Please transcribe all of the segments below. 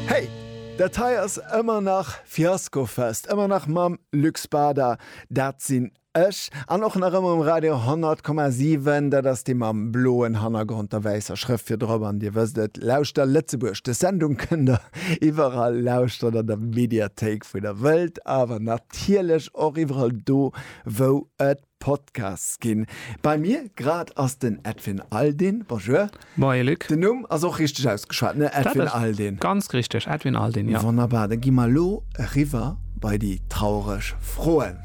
Hey! Dat hei ass ëmmer nach Fiaskofest, ëmmer nach mam Luc Spada, dat sinn ech, an och nach ëmmer um Radio 100,7, dat ass dee mam bloen Hannergrond, der wäisser Schrëft virdrop, an Dir wësst et, Lauschter Lëtzebuerg, des Sendung kënnt Der iwwerall lauschteren, an der Mediathéik, wou Der wëllt, awer natierlech och iwwerall do, wou et Podcasts ginn. Bei mir grad ass den Edwin Aldin. Bonjour. Moie Luc. Den Numm ass och richteg ausgeschwat, ne? Edwin Aldin. Dat ass ganz richteg, Edwin Aldin, jo. Wonnerbar, da gi mer elo eriwwer bei déi traureg Froen.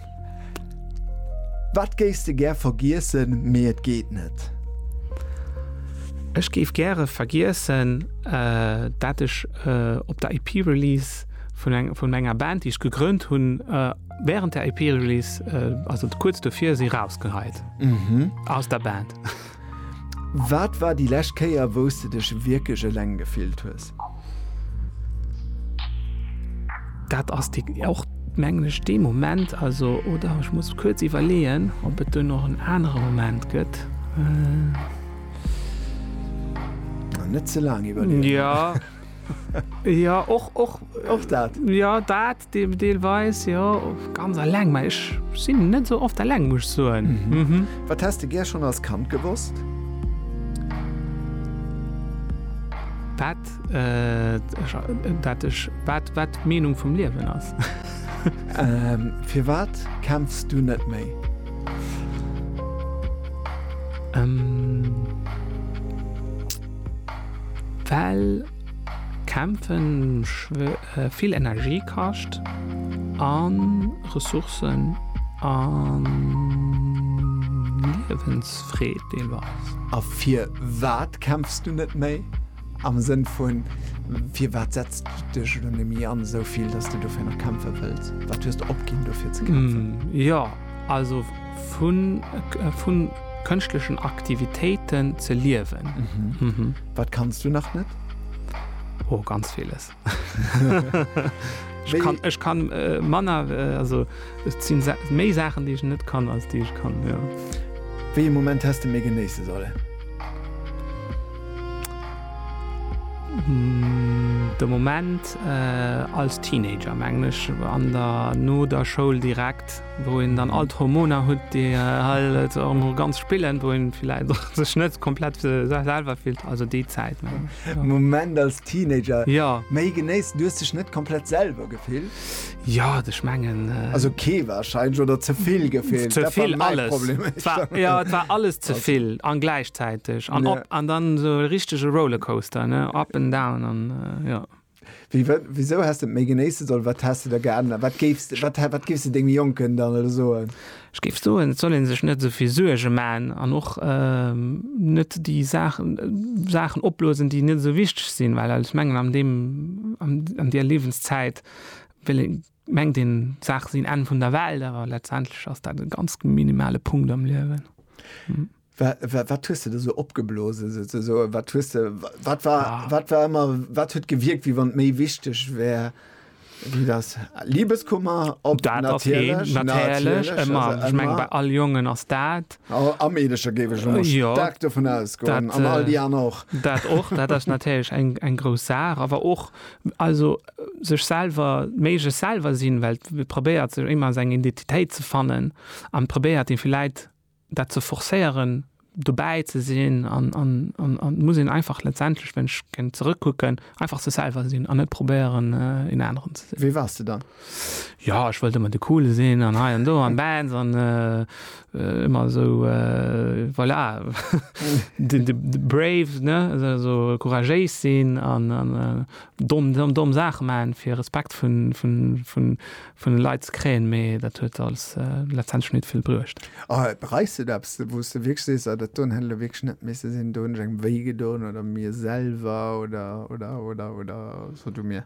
Wat géifs de gär vergiessen, mee et geet net? Ech géif gäre vergiessen, dat ech op der EP-Release vun enger Band, déi ech gegrënnt hunn, Während der EP-Release, äh, also kurz dofir si rausgeheit mhm. aus der Band. Wat war die lescht Kéier wous du dech wierklech eleng gefillt hues? Dat ass die och menglech de Moment also oder ich muss kurz iwwerleen, ob et du noch en anere Moment gëtt. Äh, net ze lang iwwer. Ja. ja och och och dat. Ja dat Deelweis, jo. Ganz alleng, mä ech sinn net esou oft alleng, muss ech soen. Wat häss de gär schonn als Kand gewosst? Wat d'Meenung vum Liewen ass. Firwat kämpfs du net méi? Well kämpfen vill Energie kascht a Ressourcen a Liewensfreed deelweis. A fir wat kämpfs du net méi? Am Sënn vun, fir wat setz du dech elo net méi an, esou vill, datt s du dofir nach kämpfe wëlls? Wat hues de opginn, dofir ze kämpfen? Jo, also vu kënschtlechen Aktivitéiten ze liewen. Wat kanns du nach net? Oh, ganz villes. Ech kann, ech kann äh, Manner äh, also sinn sa méi Sachen, déi ech net kann als déi ech kann. Ja. Wéi e Moment hast du mé genéisse solle? Mm, de Moment äh, als Teenager menglech an der no der Schoul direkt. wou een dann all d'Hormoner hutt, déi halt och emol ganz spillen, wou een villäit och sech net komplett selwer fillt, also déi Zäit. Moment als Teenager? Jo. Méi genéissen, du hues dech net komplett selwer gefillt? Jo, ech mengen. Also kee warscheinlech oder ze vill gefillt? Ze vill, alles. Et war, jo, et war alles ze vill an gläichzäiteg an op an dann esou e richtege Rollercoaster, ne, up and down an, jo. Wéi, wa, wisou häss de et méi genéisse sollen? Wat häss de da geännert? Wat géifs de, wat, wat géifs de dengem Jonken dann elo soen? Ech géif soen, et soll ee sech net esou vill Suerge man an och net déi Saachen, Saachen opblosen, déi net esou wichteg sinn, well ech mengen an deem, an, an där Liewenszäit wéll ee, mengt een d'Saache sinn Enn vun der Welt, awer letztendlech ass dat e ganz minimale Punkt am Liewen. Wat hues de der sou opgeblosen souzesoen? Wat hues de, wat war, ah. wat war immer, wat huet gewirkt, wie wann méi wichteg wär? Wie das Liebeskummer op dat natierlech, natierlech ëmmer ich meng bei all Jongen ass dat oh, am Meedescher géif ech ëmmer ja, stark davon ausgoen an all die an och dat och dat ass natierlech eng eng grouss Saach awer och also sech selber méige selber sinn Welt probéiert sech immer seg Identitéit ze fannen an probéiert den vielleicht dat ze forcéieren, dobäi ze sinn an et muss een einfach letztendlech, wann ech géing zerëckkucken, einfach sech selwer sinn an net probéieren, een aneren ze sinn. Wie waars de dann? Jo, ech wollt ëmmer de Coole sinn an hei an do an Bands an ëmmer esou, voilà, de Brave, ne, esou couragéis sinn an domm Saache maachen, fir Respekt vun vun de Leit ze kréien, mee dat huet als letztendlech nit vill bruecht. A bereis de eppes, wou s de wierklech sees, Ah, dat doen hätt elo wierklech net misse sinn, do hunn ech engem wéi gedoen oder mir selwer oder, oder, oder, oder so du mir?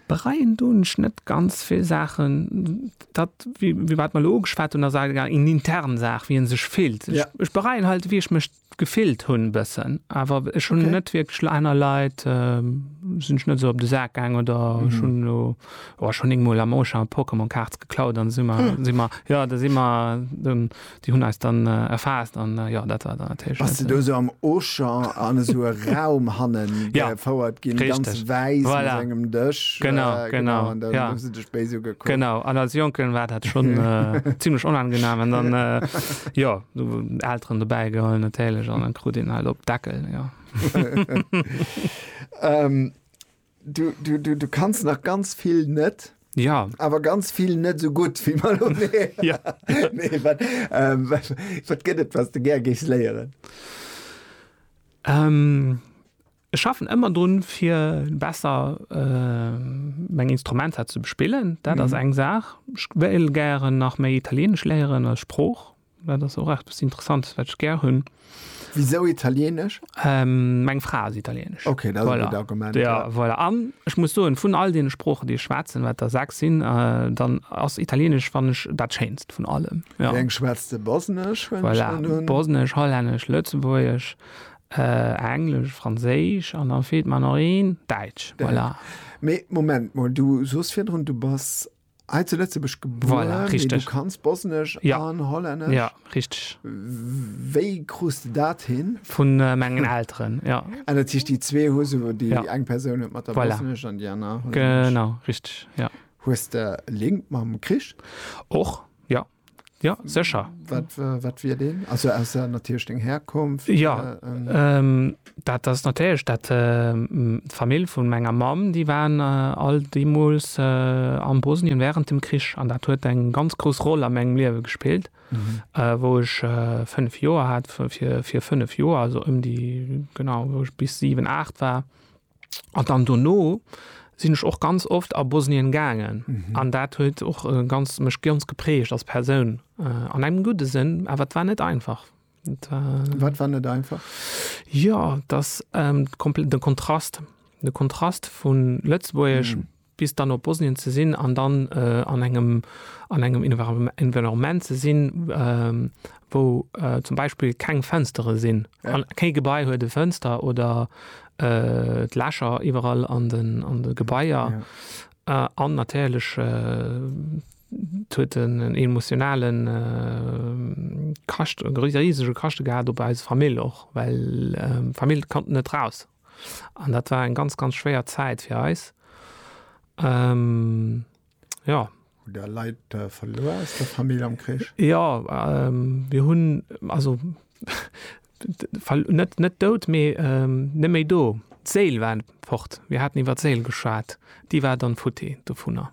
Bereien doen ech net ganz vill Saachen. Dat, wéi wat mer elo ugeschwat hunn, ass awer eng intern Saach, wéi ee sech fillt. Ech bereien halt, wéi ech mech Gefillt hun bessen awer ech hun net wierklech lo aner Leit sin ech net esou op de Saak gaang oder ech hun lo oh ech hun éngmol am Auchan Pokémon Cards geklaut an si mer si mer jo da si mer dann déi hun eis dann erfaasst an jo dat war dann natierlech net. Bass de do esou am Auchan an esou e Raum hannen gefouert gin ganz wäiss mat engem Dësch genau genau an dann hu se dech béis ugekuckt? Genau an als Jonken war dat schon zimlech onangenaam an dann jo. Du Elteren dobäi geholl natierlech an dann krut een halt op Deckel jo. ähm, du, du, du, du kannst nach ganz vill net. Ja awer ganz vill net so gut wie mal ja. nee, wat, ähm, wat, wat gëtt et was de ger gees léieren? Ähm, Ech schaffen ëmmer drun fir besser meng Instrumenter ze bespillen. Dat ass eng Saach. Ech wéilt gären nach méi Italieenesch léieren als Sprooch. Dat ass och eppes Interessantes, wat ech gär hunn. Wisou Italieenesch? Meng Fra ass Italieenesch. Ok, dat ass e gutt Argument. Jo, voilà. An ech muss soen, vun all deene Sproochen, déi ech schwätzen, wat der sechs sinn, dann ass Italieenesch, fannen ech, dat Schéinst vun allem. Wéi eng schwätz de? Bosnesch? Voilà, Bosnesch, Hollännesch, Lëtzebuergesch, Englesch, Franséisch an dann feelt mer nach een, Däitsch. Voilà. Mee Moment mol, du soos virdrun, du bass hei zu Lëtzebuerg gebuer, mee du kanns Bosnesch an Hollännesch? Jo, richteg. Wéi krus de dat hin? Vu mengen Elteren, jo. Ah, dat heescht déi zwee hu se, déi eng Persoun huet mat der Bosnesch an déi aner Hollännesch. Genau, richteg, jo. Hues de Link mam Krich? Och, jo. Ja sécher. Wat, wat wier deen? Also ausser natierlech deng Herkunft? Ja, ähm, dat ass natierlech dat, ähm, d'Famill vun menger Mamm, déi waren all deemools, äh, am Bosnien während dem Krich. An dat huet eng ganz grouss Roll a mengem Liewe gespillt, äh, wou ech, äh, fënnef Joer hat, fir, fir fënnef Joer, also ëm déi, genau, wou ech bis siwen, aacht war. An dann dono sinn ech och ganz oft a Bosnien gaangen mhm. an dat huet och äh, ganz mech ganz geprägt als Persoun äh, an engem gute Sinn, awer wat war net einfach. Et, äh, wat war net einfach? Ja, das ähm, den Kontrast, den Kontrast vun Lëtzburg mhm. bis dann op Bosnien ze sinn an dann an engem an engem Environnement ze sinn, wou zum Beispill keng Fënstere sinn, kee Gebai huet e Fënster oder et Lächer iwwerall an den an de Gebaier an natierlech et huet en emotionale Kascht, e risege Kaschte gehat op eise Famill och, well d'Famill konnt net raus. An dat war eng ganz, ganz schwéier Zäit fir eis. Ähm, ja. Hu der Leit äh, verluer aus der Famill am Krich? Ja, ähm, wir hunn, also net net dout, mee ähm, net méi do. D'Séil war fort. Wir haten iwwer d'Séil geschwat. Déi war dann futti dovunner.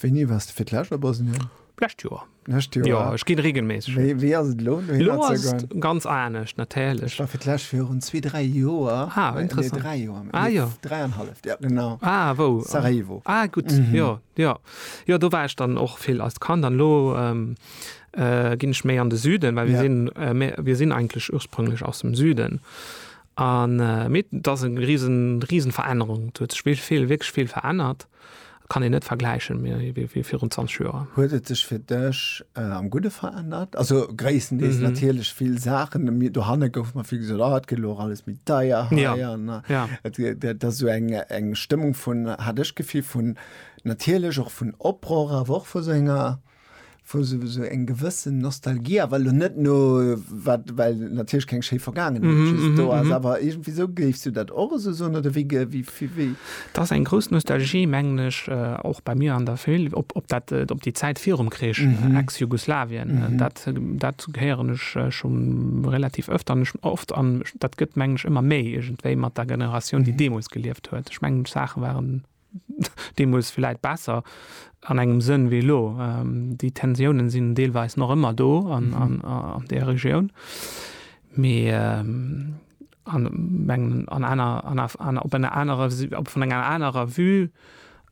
Wéini wars de fir d'lescht a Bosnien? D'lescht Joer. D'lescht Joer? Jo, ech ginn regelméisseg hin. Wéi, wéi ass et elo, dohinner ze goen? Elo ass et ganz anescht, natierlech. Ech war fir d'lescht virun zwee, dräi Joer. Ah, interessant. Nee, dräi Joer. Ah, jo. Nee, dräi an halleft, jo, genau. Ah, wou? Sarajevo. Ah, gutt, jo, jo. Jo, do war ech dann och vill als Kand an elo ginn ech méi an de Süden, well mir sinn, mir sinn eigentlech ursprünglech aus dem Süden. An, mee et ass e risen, risen Verännerung. Et huet sech vill, vill, wierklech vill verännert. Kann een net vergläichen méi wéi virun 20 Joer. Huet et sech fir dech am Gudde verännert? Also gréisstendeels natierlech vill Saachen. Dohanne gouf mer vill gesot, ah et gëtt elo och alles méi deier hei an dat ass esou eng Stëmmung vun, hat ech d'Gefill, vun natierlech och vun Oprohr, awer och vu sou enger. wou se esou eng gewëssen Nostalgie, awer elo net no wat, well natierlech keng schéi Vergaangenheet just do ass, awer iergendwéi esou. Géifs du dat och esou soen oder wéi ge, wéi, wéi, wéi? Dat ass eng grouss Nostalgie, mengen ech, och bei mir an der Famill, op, op dat, op déi Zäit virum Krich, Ex-Jugoslawien. Dat, dat héieren ech scho relativ ëft an ech, oft an dat gëtt, mengen ech, ëmmer méi iergendwéi mat der Generatioun, déi deemools gelieft huet. Ech mengen, d'Saache waren deemools villäit besser an engem Sënn wéi elo. Déi Tensiounen sinn deelweis nach ëmmer do an där Regioun, mee an op enger anerer, vun enger anerer Vue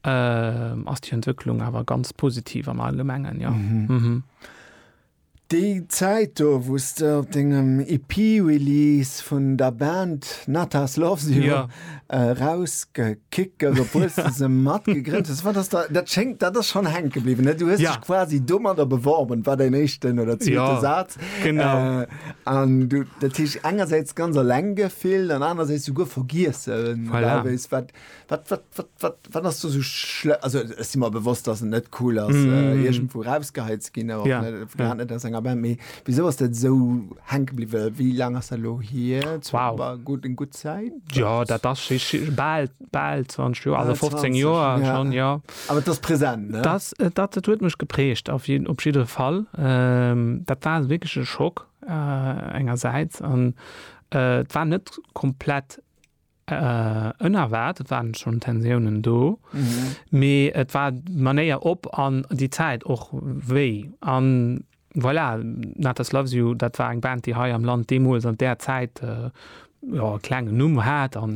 ass déi Entwécklung awer ganz positiv am Allgemengen, jo. Déi Zäit do, wou s de op dengem EP-Release vun der Band Natas Loves You ja. erausgekickt, obwuel s de se mat gegrënnt hues, wat ass da, dat schéngt, dat ass schonn hänke bliwwen, ne? Du hues ja. dech quasi domadder beworben, war däin éischten oder zweete ja. Saz. Genau. Äh, an du, dat heesch engersäits ganz alleng gefillt an anersäits souguer vergiessen, voilà. wat Wat, wat, wat, wat, wat ass du so schle also es si mer bewosst, dass et net cool ass mm. äh, irgendwo rausgeheilt ze ginn, awer ja. net, ja. net aus enger Band méi. Wieso ass dat so hänke bliwwe? Wie lang ass dat lo hier? Wow. War gut en gut Zäit? Ja, dat ass bal bal 20 Joer, also 15 Joer ja. schon ja. Aber das präsent ne? Das äh, dat dat huet mech geprägt auf jeden op jidere Fall. Ähm, dat war wirklich e Schock äh, engerseits an äh, war net komplett Ënnerwaart, et waren schonn Tensiounen do, mee et war d'Manéier op an déi Zäit och wéi. A voilà, Natas Loves You, dat war eng Band, déi hei am Land deemools an där Zäit, jo, e klengen Numm hat a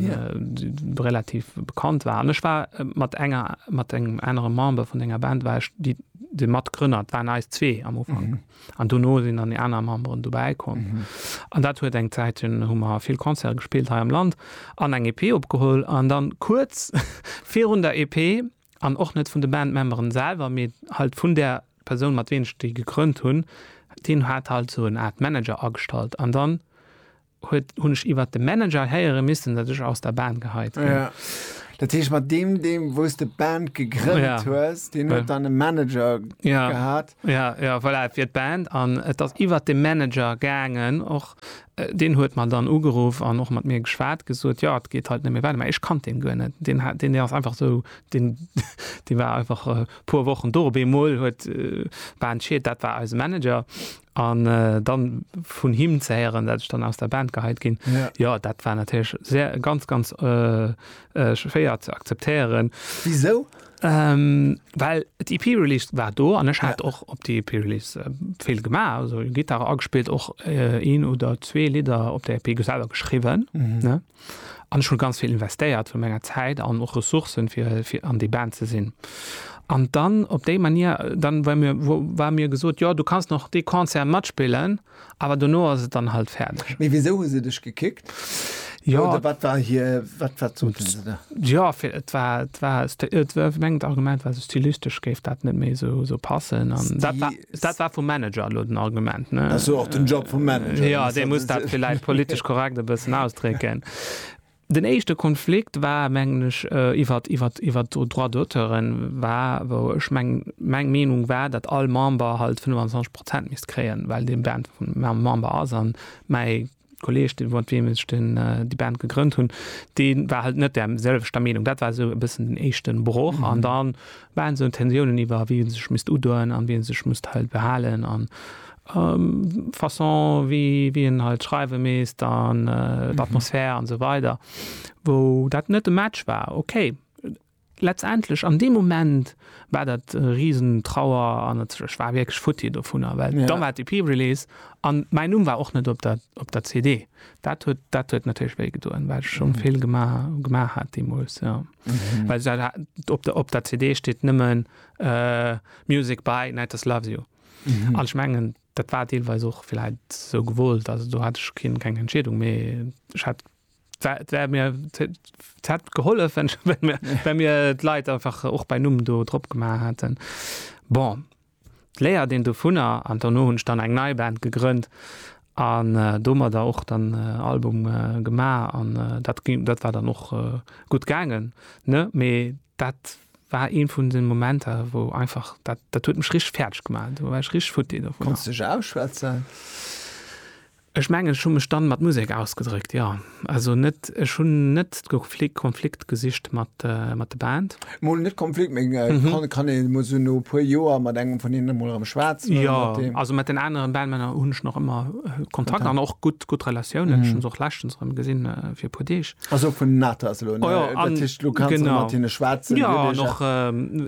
relativ bekannt war. An ech war mat enger, mat engem anere Member vun enger Band war ech déi, de Matgrënner, et waren eis zwee am Ufank. An dono sinn dann déi aner Memberen dobäi komm. An dat huet eng Zäit, dunn hu mer vill Concerte gespillt hei am Land an eng EP opgeholl. An dann kuerz virun der EP, an och net vun de Bandmemberen selwer, mee halt vun där Persoun mat ween ech déi gegrënnt hunn, deen hat halt sou en Art Manager agestallt. An dann huet, hunn ech iwwert de Manager héiere missen, datt ech aus der Band geheit ginn. Ja. Dat heescht, mat deem, deem wou s de d'Band gegrënnt Ja. hues, deen huet dann e Manager Ja. gehat. Ja, ja, voilà, et wier d'Band an et ass iwwert de Manager gaangen och. Deen huet mer dann ugeruff an och mat mir geschwat, gesot, jo, et geet halt net méi weider. Mä ech kannt deen guer net. Deen hat, deen ass einfach esou, deen, dee war einfach e puer Wochen do. Op eemol huet d'Band Shit, dat war eise Manager. An dann vun him ze héieren, dat ech dann aus der Band geheit ginn, jo, dat war natierlech sehr, ganz, ganz schwéier ze akzeptéieren. Wisou? Well d'EP-Release war do an ech hat och op der EP-Release vill gemaach, also Gittar agespillt, och een oder zwee Lidder op der EP selwer geschriwwen. An ech hunn ganz vill investéiert vun menger Zäit an och Ressourcen fir fir an déi Band ze sinn. An dann op déi Manier, dann war mir war mir gesot, jo du kanns nach dee Concert matspillen, awer dono ass et dann halt fäerdeg. Mee wisou hu se dech gekickt? Jo. Oder wat war hir, wat wat soten se da? Jo, fir et war et war et war mengt Argument war esou stylistesch géif dat net méi esou esou passen an dat war. Dat war vum Manager elo den Argument, ne? Ass jo och den Job vum Manager. Jo, dee muss dat villäicht politesch korrekt e bëssen ausdrécken. Den éischte Konflikt war, mengen ech, iwwert, iwwert, iwwert d'Droits d'auteuren war, wou ech meng, meng Meenung war, datt all Member halt 25 Prozent misst kréien, well dee Band vum Member ass a mäi Kolleg, dee mat weem ech den, déi Band gegrënnt hunn, dee war halt net där selwechter Meenung. Dat war esou e bëssen den éischten Broch. An da waren esou Tensiounen iwwer, wien sech misst udoen an wien sech musst halt behalen an d'Façon, wéi, wéi een halt schreiwe misst an d'Atmosphär an esou weider, wou dat net e Match war. Okay. Letztendlech an deem Moment war dat riesen Trauer an ech war wierklech futti dovunner, well da war d'EP-Release an mäin Numm war och net op der op der CD. Dat huet dat huet natierlech wéi gedoen, well ech schonn vill gemaach gemaach hat deemools, jo. Well dat op der op der CD steet nëmmen Music by Nighters Loves You an ech mengen dat war deelweis och villäit sou gewollt, also do hat ech keen keng Entscheedung, mee ech hat Et wär mir, et hätt gehollef, wa mir d'Leit einfach och bei Numm do drop gemaach hätten. Bon, d'Léiert een dovunner an dono hunn ech dann eng nei Band gegrënnt an domadder och dann Album gemaach an dat ginn, dat war dann och gutt gaangen, ne? Mee dat war ee vun de Momenter, wou einfach dat, dat huet mech richteg fäerdeg gemaach. Do war ech richteg futti dovunner. Konns de dech ausschwätzen? Ech mengen ech hu mech dann mat Musek ausgedréckt, jo. Also net, ech hunn net d'Konflikt, Konflikt gesicht mat, mat de Band. Mol net Konflikt, mee kann, kann een mol sou no e puer Joer mat engem vun hinnen mol erëm schwätzen oder mat deem? Jo, also mat den aneren Bandmänner hunn ech nach ëmmer Kontakt an och gutt, gutt Relatiounen. Ech hunn se och leschtens erëm gesinn, fir e puer Deeg. Also vun den Athas elo, ne? Dat heescht, elo kanns de mat hinne schwätzen. Jo, an och,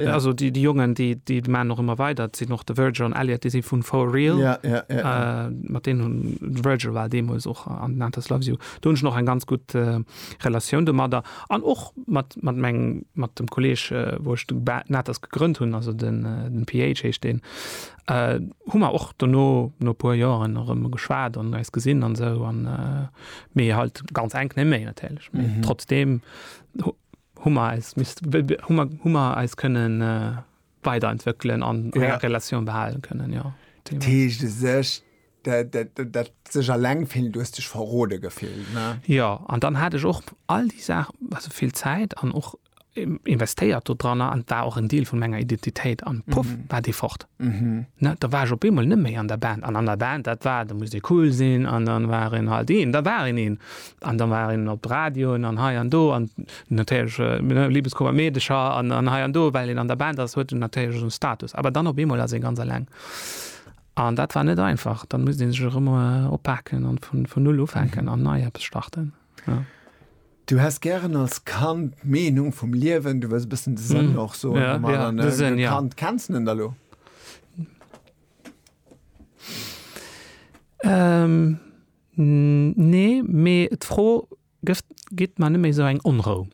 also déi Jongen, déi déi maachen och ëmmer weider. Et sinn och de Virgil an Elliott, déi si vun For Real. Ja, ja, ja. Mat deenen hunn, de Virgil war deemools och an den Athas Loves You. Do hunn ech nach eng ganz gutt Relatioun domadder. An och mat mat mengem, mat dem Kolleeg, wou ech de den Athas gegrënnt hunn, also den den PH heescht deen, hu mer och dono, no e puer Joren erëm geschwat an eis gesinn an esou an. Mee halt ganz enk ne méi natierlech. Mm -hmm. Trotzdem hummer eis mist hummer hummer eis kënnen äh, weiterentwëckelen an ja. enger Relatioun behalen kënnen ja. Teeschte sech dat, dat, dat, dat sech alleng vill dues dech verrode gefillt ne? Ja an dann hat ech och all déi Saach also vill Zäit an och investéiert do dranner an war och en Deel vun menger Identitéit an puff war dee fort. Da war ech op eemol net méi an der Band an an der Band dat war, da muss ee cool sinn an dann war een halt een, da war een een an da war een op de Radioen an hei an do an natierlech Liebeskummer, Meedecher an hei an do, well een an der Band ass huet een natierlech esou Status. Awer dann op eemol ass ee ganz eleng an dat war net einfach. Dann muss ee sech erëm oppaken an vun null ufänken an nei eppes starten. Du häss gären als Kand d'Meenung vum Liewen, du wëlls e bëssen de Sënn och soen vum Allem, ne? Als Kand, kenns de en da lo? Nee, mee d'Fro gitt mer net méi esou eng Onrou.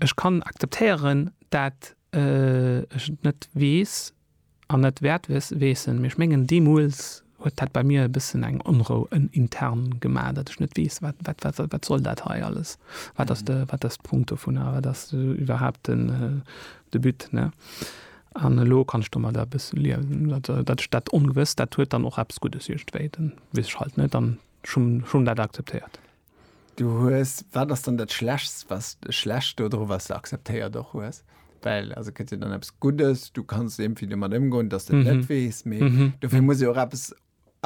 Ech kann akzeptéieren, dat ech et net weess, an net wäert weessen, mee ech mengen deemools huet dat bei mir e bëssen eng Onrou en intern gemaach, datt ech net weess, wat wat wat wat wat soll dat hei alles, wat ass de wat ass d'Punkt dovun a wat ass iwwerhaapt den de But, ne? An elo kann ech domadder e bësse liewen, datt datt ech dat Ongewësst, dat huet dann och eppes Guddes iergendwéi, dann weess ech halt net an ech hunn ech hunn dat akzeptéiert. Du hues, wat ass dann dat Schlechst, was, Schlecht dodru, was de akzeptéiert och hues? Well, also gëtt jo dann eppes Guddes, du kanns iergendwéi domat ëmgoen, dass de et net weess, mee dofir muss ee jo och eppes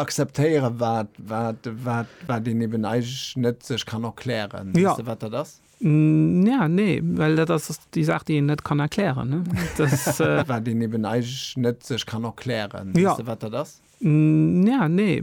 akzeptéieren, wat, wat, wat, wat een eben eigentlech net sech kann erklären. Weess de, wat dat ass? Ja, nee, well dat ass déi Saach, déi een net kann erklären, ne? Dass. Wat een eben eigentlech net sech kann erklären. Weess de, wat dat ass? Ja, nee.